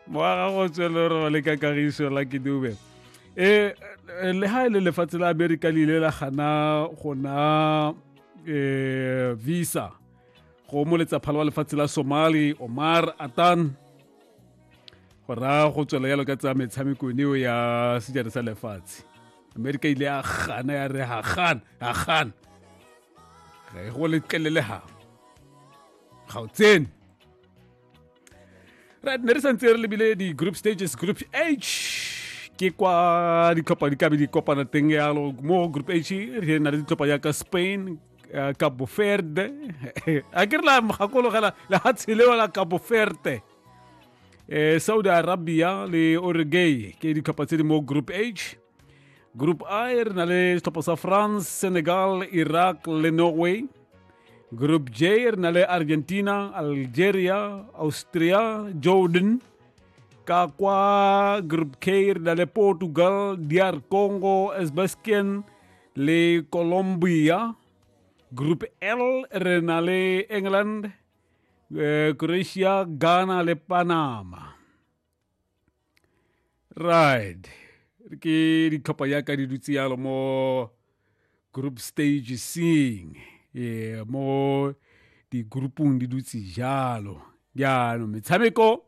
moaga go tswele re le ka kagiso la ke dube e le ha e le lefatshe la amerika le ile la gana gona um visa go mo letsaphalo wa lefatshe la somali omar atan go raya go tswela yalo ka tsaya metshamekong eo ya sejana sa lefatshe amerika ile ya gana ya re ga gana ga gana ga e go letlelele gago ga o tsene right ne re santse re lebile di-group stages group h ke kwa ditlhopha di kabe di kopana teng yalo mo group h re na le ditlhopha yaka spain uh, cabo verde a ke re la gakologela le ga tshelewa la cabo verde eh, saudi arabia le oregay ke ditlhopha tse di mo group h Grup Air na le setlhopha sa france senegal iraq le norway Group J na le Argentina, Algeria, Austria, Jordan. Ka kwa Group K na le Portugal, DR Congo, Uzbekistan le Colombia. Group L re na le England, eh, Croatia, Ghana le Panama. right ke ditlhopha yaka di dutse yalo mo group stage seeing e mo di-groupong di dutse jalo jaanong metshameko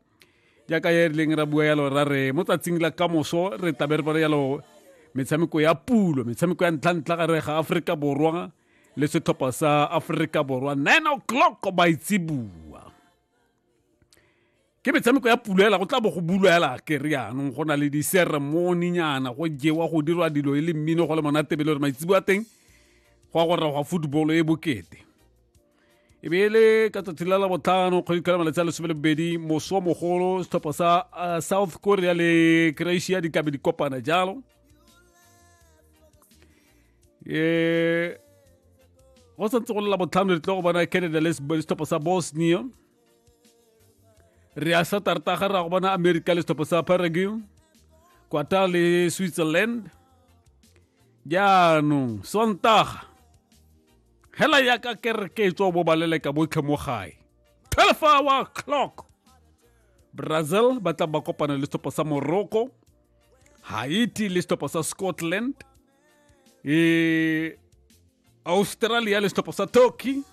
jaaka e rileng ra bua yalo ra re mo tsatsing la kamoso re tabe re bone yalo metshameko ya pulo metshameko ya ntlhantlha ga re ga aforika borwa le setlhopha sa aforika borwa nine o'clock baitsibua ke metshameko ya pulo ela go tla bo go bulwa ela ke re yanong go na le diseremoninyana go jewa go dirwa dilo e le mmino go le monatebele gore maitsibo a teng go ya go rra gwa football e bokete e be e le ka tsatsi la labotlhano kgwedi tlhola malatsi a lesome le bobedi moso mogolo setlhopha sa uh, south korea le croatia di tlabe di kopana jalo e go santse go le labotlhano re tlo go bona canada le setlhopha sa bosnia re a sa tartaga ra go bona america le setlhopho sa paraguay kwata le switzerland jaanong sontaga hela ya ka kereke e tswa bo baleleka botlhe mo gae 12 hour clock brazil ba tla ba kopana le setlhopho sa morocco haiti le setlhopho sa scotland e australia le setlhopho sa turkey